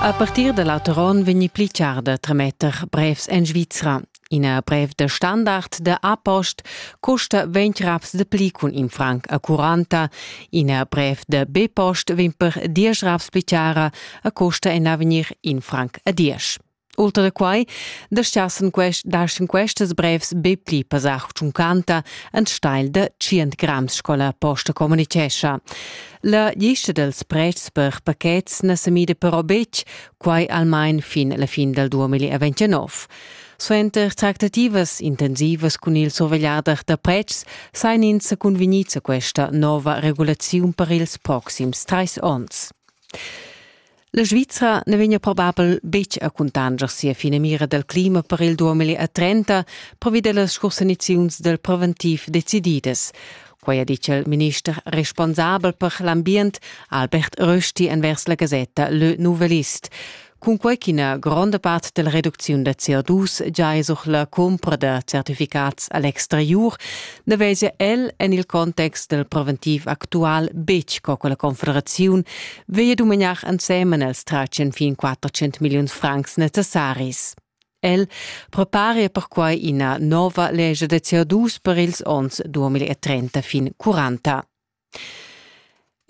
A partir da l'auteron vegni pli char da trametter brevs en Svizra. Ina brev da standard da A-Post custa 20 raps de pli cun in franc a 40. Ina brev da B-Post vegn per 10 raps pli chara a custa en avegnir in franc a 10. Ultra da quai dastgassan quest, dastan questas brevs be pli pasar tschuncanta en stagl da 100 grams sco la posta communitgescha. La lista dels prezs per pachets na se mida però betg, quai almain fin la fin dal 2029. Suenter tractativas intensivas cun il survegliader da pretschs sain ins sa convenids a questa nova regulaziun per ils proxims trais onns. La Svizra na vegna probabel betg a cuntanscher sia finamira dal clima per il 2030, provi da las scursaniziuns dal preventiv decididas. Quai ha ditg il minister responsabel per l'ambient Albert Rösti envers la gasetta Le Nouvelliste. Cunquai ch'ina gronda part della reducziun da CO2 già è sur la cumpra da certificats all'exterior, na vezia el en il context del preventiv actual betg co quella confederaziun Veie dumegnar ensemen els tracen fin 400 milliuns francs necessaris. El preparia perquai ina nova lege de CO2 per ils ons 2030 fin 40.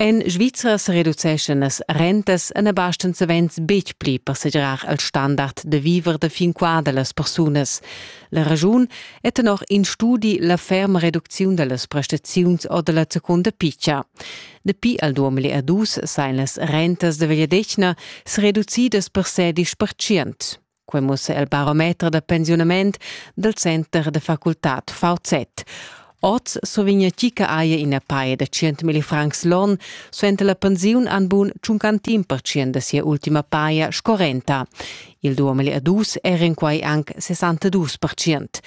En Svizra se reduceschen las rentas en abasten savens betg pli per segirar el standard de viver de fin qua de las persunas. La ragiun è tenor in studi la ferma reducziun de las prestaziuns o de la seconda piccia. Dapi al 2002 sain las rentas da Vegliadetgna sereducidas per sedisch percient. Quai mussa il barometer da pensiunament dal Center da facultad VZ. Oz survigna chi che haja ina paia da 100.000 francs l'on, suenter la pensiun han bun tschuncantin percient da sia ultima paia sco renta. Il 2002 era in quai anc 62 percient.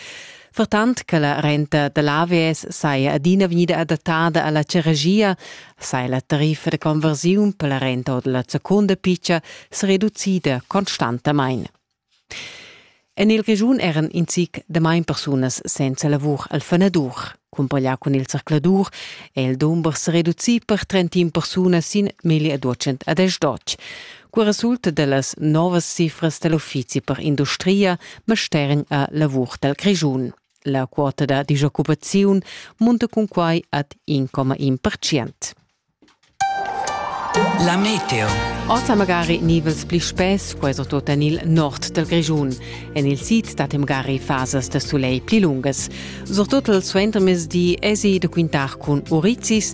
Vertant che la renta da l'AVS saja adina vegnida adattada a la charagia, saja la tariffa da conversiun per la renta or da la seconda piccia se reducida constantamain. En il regiun eran in zic damain persunas senza lavur al fanadur. Cumpaglià cun il zercladur è il dumber se reducì per 31 persunas sin 1210. Qua resulta dellas novas cifras dell'uffizi per industria Mastergn a lavur del Grischun. La quota da disoccupaziun munta cun quai ad 1,1%. La meteo. Ossa magari nivels pli spess, quai so tot en il nord del Grischun. En il sid stat magari fasas da soleil pli lungas. Surtut il suentermezdi esi da quintar cun urizis,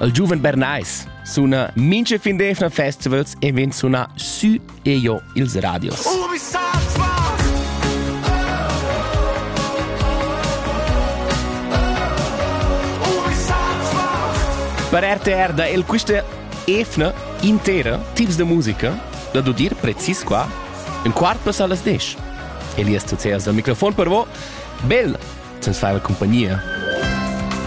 Il giuven Bernais suna mincha fin d'eivna festivals e vegn sunà sü e giò ils radios. Per RTR da el quista efna intera tips de musica da dudir precis qua un quart passa las 10. Elias Tuceas dal microfon per vo. Bel, sens fai la compagnia.